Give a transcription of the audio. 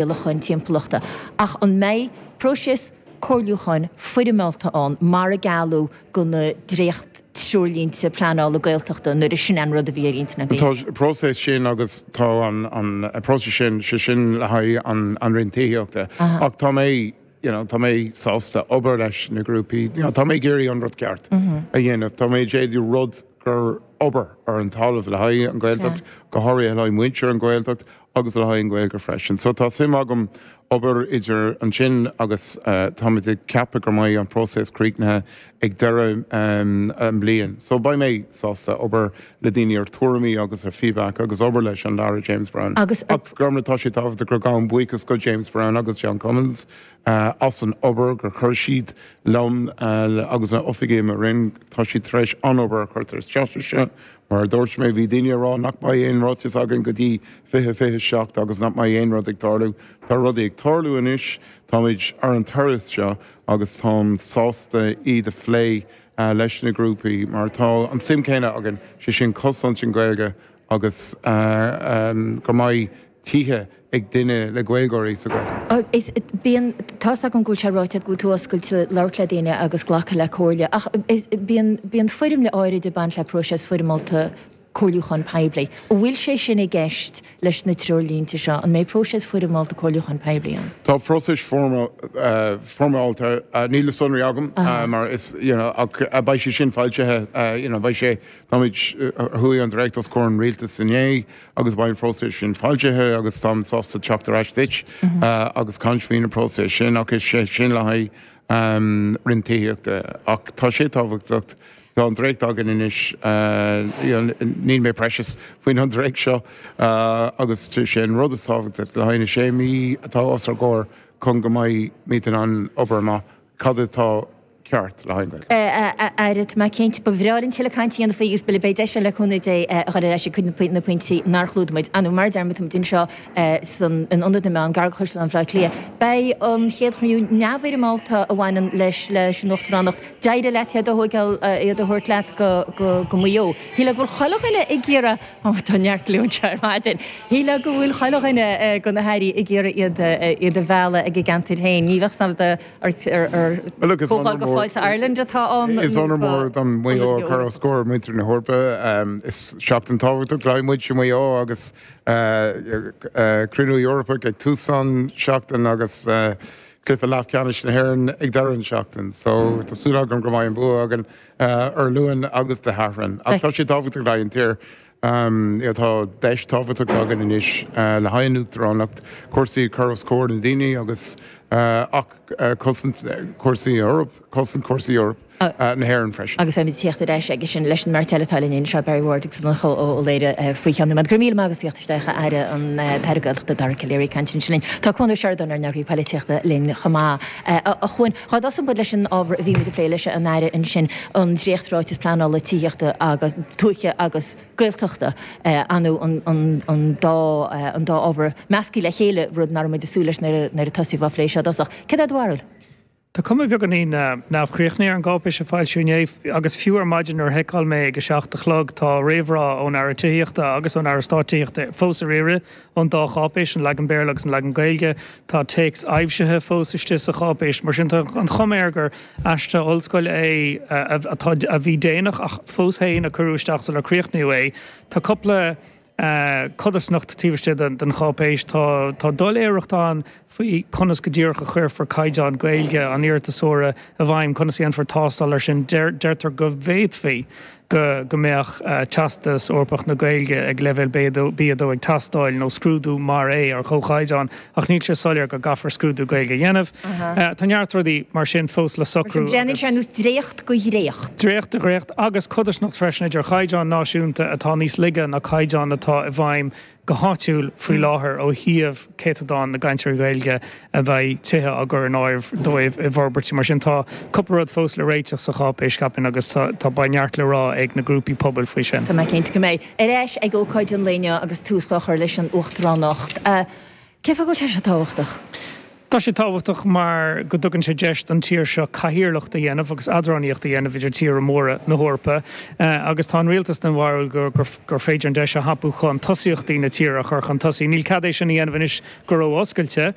rialacháin timpeallachta, ach an mbeidh próiseas comhairliúcháin foirmeálta ann, mar a gealladh do na dréacht-treoirlínte pleanála Gaeltachta, nó an é sin an rud a bhí ar intinn againn? Tá an próiseas sin agus tá an próiseas sin, sé sin le haghaidh an Roinn Tithíochta, ach tá mé, you know, tá mé sásta obair leis na grúpaí, tá mé ag iarraidh an rud ceart a dhéanamh, tá mé ag iarraidh rud gur obair ar an talamh le haghaidh an Ghaeltacht, go háirithe le haghaidh muintir an Ghaeltacht, agus le haghaidh an Gaeilge freisin. So tá suim agam obair idir ansin agus táimid ag ceapadh go mbeidh an próiseas críochnaithe ag deireadh an bliain. So beidh mé sásta obair le daoine ar tuairimí agus ar feedback agus obair leis an Aire James Brown. Agus ar. Ach gan amhras, tá sé tábhachtach gur gabhaim buíochas go James Brown agus John Cummins as an obair gur chuir siad liom agus na oifigigh i mo Roinn. Tá siad tar éis an-obair a chuirtear isteach anseo Mar a dúirt mé, bhí daoine ag rá nach mbeidh aon ráiteas againn go dtí 2027 agus nach mbeidh aon rud ag tarlú. Tá rudaí ag tarlú anois, táimid ar an turas seo agus táim sásta iad a phlé leis na grúpaí mar tá an suim céanna againn, sé sin cosaint an Gaeilge agus go mbeidh tithe ag duine le Gaeilgeoirí sa Gaeltacht. Ach bíonn, tá's agam go bhfuil sé ráite agat go bhfuil tú oscailte labhairt le daoine agus glacadh le comhairle, ach bíonn, bíonn foirmle áirid ag baint le próiseas foirmeálta comhairliúcháin poiblí. An bhfuil sé sin i gceist leis na treoirlínte seo? An mbeidh próiseas foirmeálta comhairliúcháin poiblí ann? Tá próiseas foirmeálta, níl na sonraí agam mar is, you know, ach beidh sé sin foilsithe, you know, beidh sé, táimid, chuaigh an Dréacht os comhair an Rialtais inné agus beidh an phróiseas sin foilsithe agus táim sásta teacht ar ais duit agus caint faoin an próiseas sin ach is é sin le haghaidh roinn tithíochta. Ach tá sé tábhachtach, tá an dréacht againn anois, níl mé precious faoin an dréacht seo agus sé an rud is tábhachtach le haghaidh na sé mhí atá os ár gcomhair chun go mbeidh muid in ann obair amach. Cad atá ceart le haghaidh an Gaeltacht? A Aire tá mé cinnte. Ba bhreá linn tuilleadh cainte a dhéanamh faoi agus b'fhéidir go mbeidh deis ann le cúnamh Dé a dhul ar ais ag cuid de na pointí nár chlúdaigh muid inniu. Mar a deir muid tá muid anseo in Ionad na Meán, gar go Caisleán Bhleá Cliath. Beidh an chéad chruinniú neamhfhoirmeálta a bhaineann leis leis an Uachtaránacht. D'éirigh leat iad a thóigeáil iad a thabhairt leat go Maigh Eo. Shílfeá go bhfuil chuile dhuine ag iarraidh. Ó, tá neart ráite anseo ar maidin. Shílfeá go bhfuil chuile dhuine de na hairí ag iarraidh iad a mhealladh ag a gceantair féin. Ní bheadh a fhios agat nach comhdháil de Fáilte Ireland atá ann. Is onóir mór dom Maigh Eo a chur os comhair muintir na hEorpa. Is seachtain tábhachtach le haghaidh muintir Mhaigh Eo agus Cruinniú Eorpach ag tús an seachtain agus cluiche leath ceannais na hÉireann ag deireadh an seachtain. So tá súil agam go mbeidh an bua againn. Dé Luain agus Dé Sathairn. Ach tá sé tábhachtach le haghaidh an tír. Tá deis tábhachtach againn anois le haghaidh an Uachtaránacht, cúrsaí cur os comhair na ndaoine agus ach cosaint cúrsaí Eoraip, cosaint cúrsaí Eoraip na hÉireann freisin. Agus beimid ag teacht ar ais aige sin leis an mbeirt eile atá linn anois, Barry Ward agus Donncha Ó Laoghaire faoi cheann tamaill. Go raibh míle maith agat as teacht isteach, a Aire an tAire Gaeltachta, Dara Calleary. ag caint ansin linn. Tá Cuan Ó Seireadáin, ár nEagraí Polaitíochta, linn chomh maith. A Chuan. Tosóidh muid leis an ábhar a bhí muid a phlé leis an Aire ansin an dréacht-Ráiteas Pleanála Tithíochta agus, Tuaithe agus Gaeltachta, anois an dá ábhar measctha le chéile, rud ná raibh muid ag súil leis nuair a tosaíodh á phlé seo i dtosach. Cad é do bharúil? Tá cuma beagáinín neamhchríochnaithe ar an gcáipéis a foilsíodh inné agus fiú ar maidin nuair a sheiceáil mé ag a seacht a chlog tá réamhrá ón Aire Tithíochta agus ón Aire Stáit Tithíochta fós ar iarraidh. ón dá cháipéis, an leagan Béarla agus an leagan Gaeilge. Tá téacs aibhsithe fós istigh sa cháipéis. Mar sin, tá an chuma air gur aiste ollscoile é atá a bhí déanach fós agus a cuireadh isteach sular críochnaíodh é. Tá cúpla codarsnacht taobh istigh den cháipéis. Tá doiléireacht ann. faoi conas go díreach a chuirfear caighdeán Gaeilge an iarratasóra i bhfeidhm, conas a dhéanfar tástáil air sin, deirtear go bhféadfaí go mbeadh Teastas Eorpach na Gaeilge ag leibhéal B2 ag teastáil, nó scrúdú mar é ar chomhchaighdeán, ach níl sé soiléir go gcaithfear scrúdú Gaeilge a dhéanamh. Tá neart rudaí mar sin fós le socrú. Mar sin, breathnaíonn sé ar nós dréacht de dhréacht, dréacht de dhréacht, agus codarsnacht freisin idir chaighdeáin náisiúnta atá níos laige ná caighdeáin atá i bhfeidhm go háitiúil faoi láthair ó thaobh céatadán na gcainteoirí Gaeilge a bheidh tithe á gcur in áirithe dóibh i bhforbairtí mar sin. Tá cúpla rud fós le réiteach sa cháipéis, ceapaim, agus tá beidh neart le rá ag na grúpaí pobail faoi sin. Tá mé cinnte go mbeidh. Ar ais ag ócáid an lae inniu agus tús á chur leis an uachtaránacht. Cé fáth go bhfuil sé seo tábhachtach? Tá sé tábhachtach mar go dtugann sé deis don tír seo cathaoirleacht a dhéanamh agus eadránaíocht a dhéanamh idir tíortha móra na hEorpa agus tá an rialtas den bharúil gur féidir an deis a thapú chun tosaíochtaí na tíre a chur chun tosaigh. Níl cead é sin a dhéanamh anois go ró-oscailte.